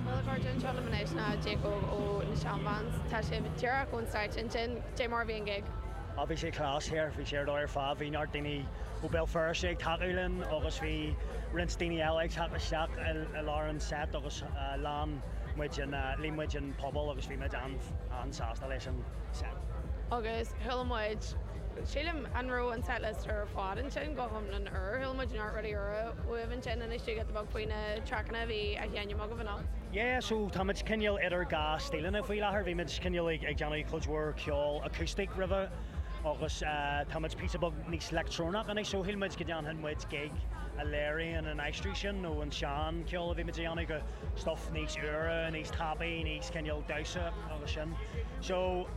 Murach gur dhein anseo liom anois tá Jake ó na Shan Vans, tá sibh díreach ón stáitse ansin, cad é mar a bhí an gig. Á, bhí sé class thoir, bhí sé ar dóigh ar fad, bhí neart daoine ó Béal Feirste ag tacú linn agus bhí roinnt daoine eile ag teacht isteach i lár an seit agus líon muid an, líon muid an puball agus bhí muid an-sásta leis an seit. Agus chuala muid. Sílim, an raibh an setlist ar fad ansin go hiomlán úr? Chuala muid neart rudaí úra uaibh ansin inis dúinn píosa beag faoi na traiceanna a bhí á sheinm agaibh anocht. Yeah, so tá muid cineál idir dhá stíleanna faoi láthair. Bhí muid cineál ag déanamh cuid mhór ceol acoustic roimhe agus tá muid píosa beag níos leictreonach anois, so shíl muid go ndéanfainn muid gig a léiríonn an aistriú sin ón sean ceol a bhí muid ag déanamh go stuff níos úire, níos tapaidh, níos cineál damhsa agus sin. So.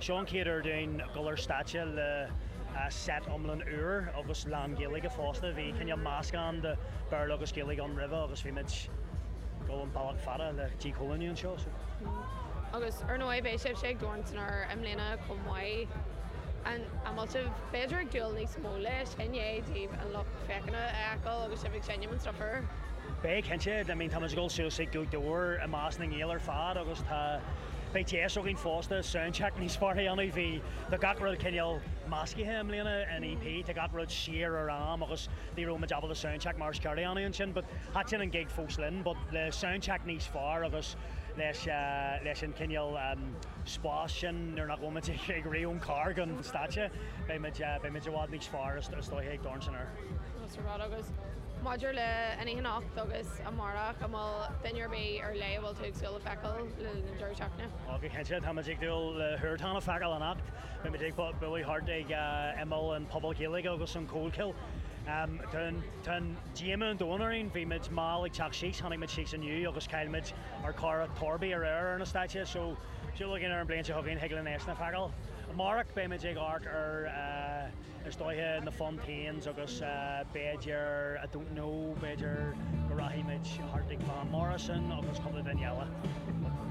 Seo an chéad uair dúinn dul ar stáitse le seit iomlán úr agus lán-Ghaeilge fosta. Bhí cineál meascán de Bhéarla agus Gaeilge ann roimhe agus bhí muid ag dul an bealach fada le dícholúnú anseo so. Agus ar ndóigh beidh sibhse ag Dorn san Aer i mbliana chomh maith. An bhfuil sibh b'fhéidir ag dúil níos mó leis i ndiaidh daoibh an lucht féachana a fheiceáil agus sibh ag seinm anseo fur? Beidh cinnte, I mean tá muid ag dul suas ag Gaoth Dobhair i measc na nGael ar fad agus tá, Beidh deis againn fosta soundcheck níos fearr a dhéanamh, bhí tá gach rud cineál meascaithe i mbliana in EP, tá gach rud siar ar am agus ní raibh muid ábalta soundcheck mar is ceart a dhéanamh ansin but thaitin an gig fós linn but le soundcheck níos fearr agus leis leis an cineál spás sin nuair nach bhfuil muid ag rith ón charr go an stáitse beidh muid beidh muid i bhfad níos fearr is dóiche ag Dorn san Aer. sa rud agus maidir leis an oíche anocht agus amárach, an bhfuil duine ar bith ar leith a bhfuil tú ag súil le feiceáil le linn an deireadh seachtaine? Ó, go cinnte, tá muid ag dúil le Huartán a feiceáil anocht. Beidh muid ag bualadh thart ag imeall an Puball Gaeilge agus an Chollchoill. Tá an díomá an domhain orainn, bhí muid mall ag teacht síos, tháinig muid síos inniu agus chaill muid ár gcara Torby aréir ar an stáitse, so súil againn ar an bhliain seo chugainn thig linn eisean a fheiceáil. Amárach beidh muid ag amharc ar. Is dóiche na Fontaines agus b'fhéidir, I don't know, b'fhéidir go rachaidh muid thart ag Van Morrison agus cúpla duine eile.